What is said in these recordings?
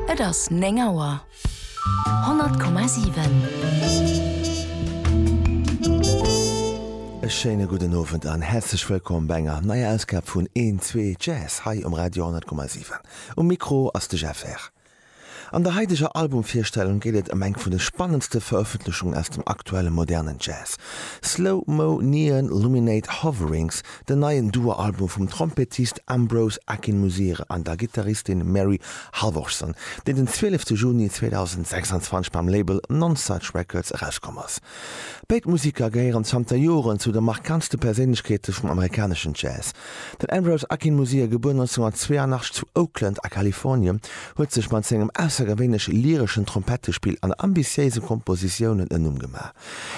Et ass 9 Auer. 100,7. E schéine gudden Owend an häerzlech wëllkomm bei enger neier Ausgab vun Een Zwee Jazz hei um Radio 100,7. Um Mikro ass de Jeff Herr. An der haideger Albumvirstellung geet et ëm eng vun de spannendste Verëffentlechungen aus dem aktuelle modernen Jazz, Slow Mo Neon Luminate Hoverings, den neien Duo-Album vum Trompettist Ambrose Akinmusire an der Gittaristin Mary Halvorsson, deen den 12 Juni 2026 beim Label Nonesuch Records erauskomm ass. Béid Museker gehéieren zanter Joren zu de markantste Perséinlechkeete vum amerikaneschen Jazz. Den Ambrose Akin Museer, gebuer 1982 zu Oakland a Kalifornien, huet sech mat sengem aussergewéinlech lyreschen Trompettespill an ambitiéise Kompositiounen en Numm gemaach.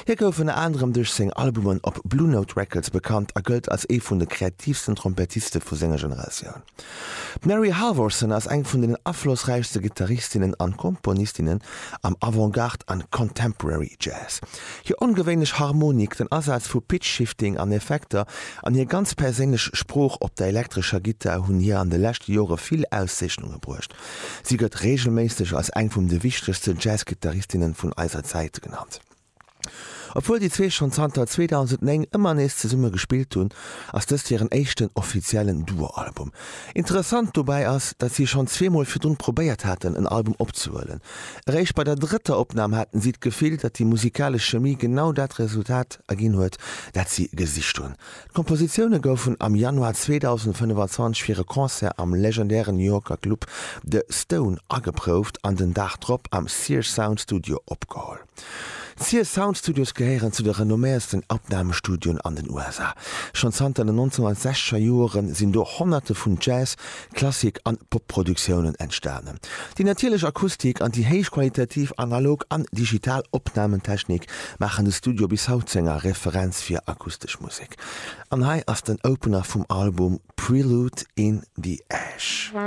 Hie gouf ënner anerem duerch seng Albumen op Blue Note Records bekannt a gëllt als ee vun de kreatiivsten Trompettiste vu senger Generatioun. D'Mary Halvorsen ass eng vun den aflossräichste Gittaristinnen an Komponistinnen am Avant-Garde an Contemporary Jazz. Hir ongewéinlech Harmonik, den Asaz vu Pitch-Shifting an Effekter an hir ganz perséinlech Sprooch op der elektrescher Gittar hunn hir an de leschte Jore vill Auszeechnunge bruecht. Si gëtt reegelméisseg als eng vum de wichtegste Jazz-Gittaristinne vun eiser Zäit genannt. Obwuel déi zwee schonn zanter 2009 ëmmer nees zesumme gespillt hunn, ass dëst hiren éischten offiziellen Duo-Album. Interessant dobäi ass, datt si schonn zweemol virdrun probéiert haten, en Album opzehuelen, Eréischt bei der drëtter Opnam haten si d'Gefill, datt déi musikalesch Chemie genau dat Resultat erginn huet, dat si gesicht hunn. D'Kompositioune goufen am Januar 2025 fir e Concert am legendären Yorker Club The Stone ageprouft an den Dag drop am Sears Sound Studio opgeholl. D'Sear Sound Studios gehéieren zu de renomméiersten Abnamestudioen an den USA. Schonn zanter den 1960er Jore sinn do Honnerte vun Jazz-, Klassik an Pop-Produktiounen entstanen. Déi natierlech Akustik an déi héichqualitativ analog an digital Opnamentechnik maachen de Studio bis haut zu enger Referenz fir akustesch Musek. An hei ass den Opener vum Album Prelude in the Ash.